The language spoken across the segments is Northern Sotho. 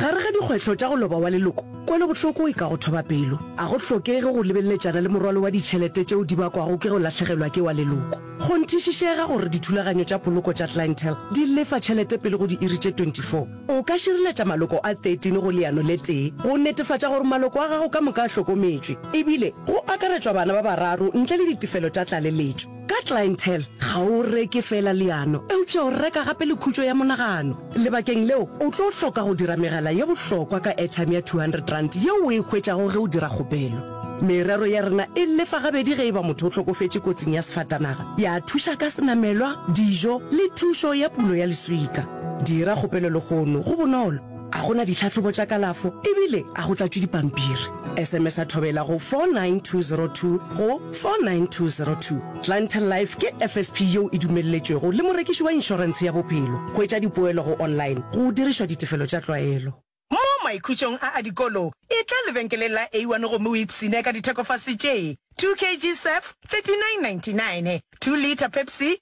Gare ga dikgwetlho tša go loba wa leloko, kwelobohloko e ka go thoba pelo. A go hlokege go lebeletšana le morwalo wa ditšhelete tšeo di bakwago ke go lahlegelwa ke wa leloko. Go nthišišega gore dithulaganyo tša poloko tša Clientele di lefa tšhelete pele go diiri tše 24. O ka šireletša maloko a 13 go leano le tee go netefatša gore maloko a gago ka moka a hlokometšwe, e bile go akaretšwa bana ba bararo ntle le ditefelo tša tlaleletšo. Ka clientele ga o reke feela leano eupša o reka gape le khutšo ya monagano. Lebakeng leo, o tlo hloka go dira megala ye bohlokwa ka airtime ya R200 yeo o e hwetšago ge o dira kgopelo. Merero ya rena e lefa gabedi ge e ba motho o hlokofetše kotsing ya sefatanaga, ya thuša ka senamelwa, dijo le thušo ya pulo ya leswika. Dira kgopelo lehono, go bonolo. A go na ditlhahlobo tša kalafo ebile a go tlatšwe dipampiri? SMS-a Thobela go 49202 go 49202. Clientele Life ke FSP yeo e dumelletšwego le morekiši wa inšorentshe ya bophelo. Hwetša dipoelo go online go dirišwa ditefelo tša tlwaelo. Mo maikhutšong a a dikolo, etla lebenkeleng la A one gomme o ipshine ka dithekofase tše, 2 kg surf, 39.99, 2 litre Pepsi,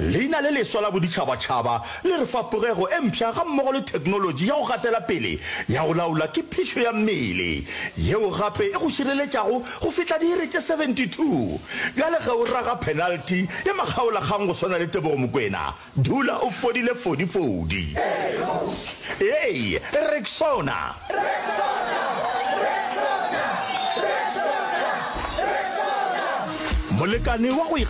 Leina le leswa la boditšhabatšhaba le re fa pogego e mpsha gammogo le theknolotši ya go gatela pele ya go laola ke phišo ya mmele, yeo gape e go šireletšago go fihla diiri tše 72. Bjale ge o raga phenalti ya makgaolakgang go swana le Tebogo Mokwena, dula o fodile fodifodi. Ee, Rexona! Molekane wa go ikgethela.